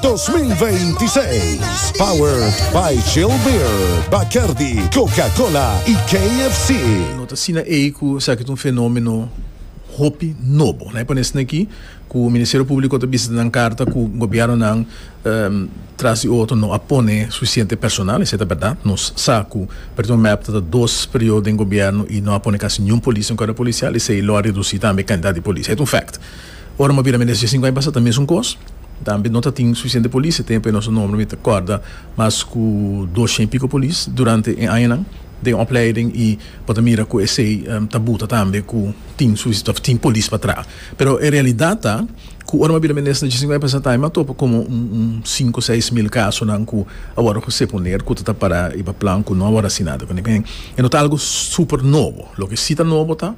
2026. Powered by Chill Beer, Bacardi, Coca-Cola y KFC. No ta asina ei cu esaki ta un fenomeno hopi nobo. Nan e pone asina aki cu Ministerio Publico ta bisa nan carta cu gobiernonan tras di otro no a pone suficiente personal. Esey ta berdad. Nos sa cu Preton Mep ta ta dos periodo den gobierno y no a pone casi niun polis den cuerpo policial. Esey lo a reduci tambe cantidad di polis. Esey ta un fact. Ora m'a bira mi nesesita sinku aña pasa ta mesun kos. Tambe no ta tin sufisiente polis, e tempu e nos nomber mi ta kòrda mas ku doshen i piko polis durante e añanan den opleiding i bo ta mira ku esei ta buta tambe ku tin sufisiente òf tin polis pa traha. Pero e realidat ta ku ora m'a bira mi nesesita nesesita sinku aña pasa ta m'a topa komo un sinku seis mil kasonan ku a wòrdu José poner ku ta ta para riba plan ku no a wòrdu asina ta kende ken. E no ta algu super nobo. Loke si ta nobo ta.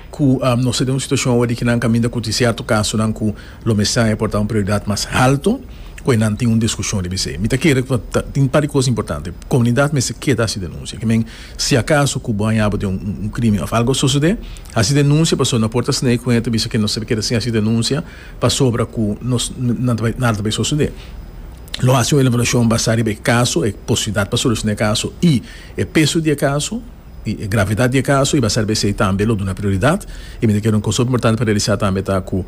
cu nos ta den un situacion awe di ki nan caminda cuti cierto casonan cu lo mester a porta un prioridad mas alto cu enan tin un discusion riba esey. Mi ta kere cu ta tin un par di cos importante. Comunidad mester keda haci denuncia. Ki men si acaso cu bo haña bo den un crimen of algo a sucede, haci denuncia pasobra no por ta sney cu hende ta bisa cu nos a keda sin haci denuncia pasobra cu nos nan ta bay nada ta bay sucede. Lo haci un elaboracion basa riba e caso, e posibilidad pa soluciona e caso y e peso di e caso. y e gravedad di e caso y ba ser bcey tambe lo duna prioridad y mi ta kere un cosa importante pa realisa tambe ta cu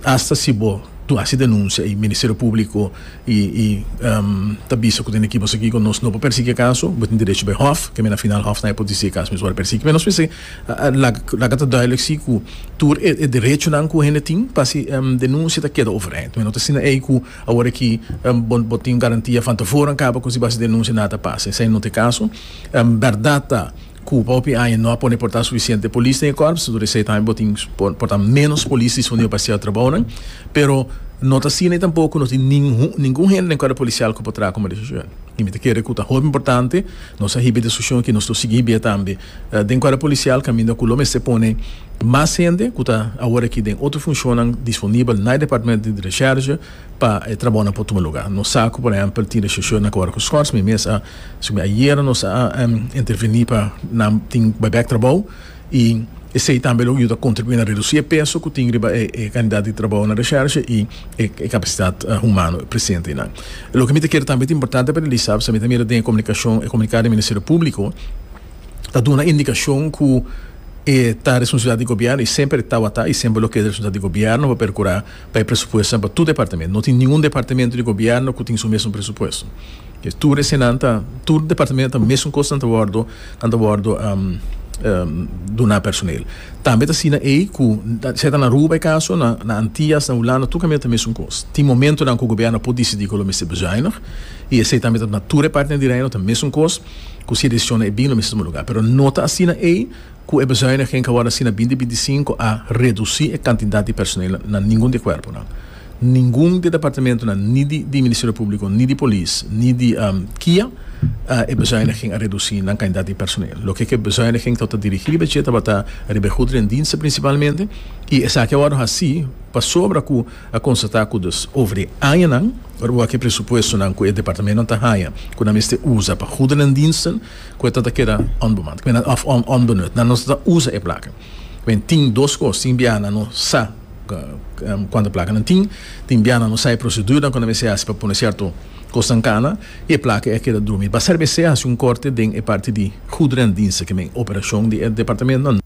hasta si bo dun haci denuncia y Ministerio Publico y ta bisa cu tin aki boso aki cu nos no por persegui e caso bo tin derecho bay hof keme na final hof nai por dici e caso mi worde persegui pero nos mester laga ta duidelijk si cu tur e derechonan cu hende tin pa haci denuncia ta keda over eind mi no ta asina ey cu awor aki bo tin garantia van tevoren caba cu si bo haci denuncia nada ta pasa esey not e caso. En berdad ta Cuba hopi aña no a pone por ta suficiente polis den e kòrps, tur esei tambe bo tin por ta ménos polis disponible pa hasier trabounan, pero no ta asina y tampoco no tin ningun hende den kòrp polisial cu por traha como decision. Y mi ta kere cu ta hopi importante nos a hiba e discusion aki, nos lo sigui hibié tambe den kòrp polisial caminda cu lo mester pone mas hende cu ta awor aki den otro funcionnan disponible na e departamento di Resherge pa e trabounan por tuma lugar. Nos sa cu por ehempel tin Resherge na Cabo Rocoskos, mi mes a Esei ayer nos a interveni pa nan tin baibèk trabou i esei tambe lo yuda kontribuí na redusí e peso ku tin riba e kandidat di trabou na reshèrshe i e kapasitat humano presente einan. Loke mi ta kere tambe ta importante pa realisá pasobra mi ta mira den e komunikashon, e komunikado di Ministerio Públiko ta duna indikashon ku e ta responsabilidat di gobièrnu i semper e tawata i semper lo ke ta responsabilidat di gobièrnu pa perkurá. Pa e presupuestonan pa tur departamento. No tin ningun departamento di gobièrnu ku tin su mesun presupuesto. Ke tur esenan ta, tur departamento ta mesun kos nan ta wòrdu, nan ta wòrdu duná personel. Tambe ta asina ei ku sea ta na Aruba e kaso, na na Antias, na Hulanda, tur kaminda ta mesun kos. Tin momentunan ku gobièrnu a por disidí ku lo mester bezuinig, i esei tambe ta na tur e partenan di reino, ta mesun kos ku si e desisionnan e bin lo mester tuma lugá. Pero no ta asina ei. ku e bezuiniging ku a wòrdu hasi na binti binti sinku a redusí e kantidat di personel na ningun di e kuerponan. Ningun di e departamentunan, ni di di Ministerio Públiko, ni di Polis, ni di kia e bezuiniging a redusí nan kantidat di personel. Loke ku e bezuiniging ta wòrdu dirigí riba dje tabata riba e goederendiensten prinsipalmente, i esaki a wòrdu hasi pasobra ku a konstatá ku dus over e añanan, ora bo wak e presupuestonan ku e departamentunan ta haña ku nan mester usa pa goederendiensten, Cu e ta ta keda onbemand, cu of onbenut. Nan nos ta usa e placa. Bien, tin dos cos, tin bia nan no sa cuanta placa nan tin, tin bia nan no sa e proceduran cu nan mester haci pa pone cierto cosnan cana, y e placa a keda drumi. Ba ser mester haci un corte den e parti di goederendiensten, cu men operacion di e departamentnan.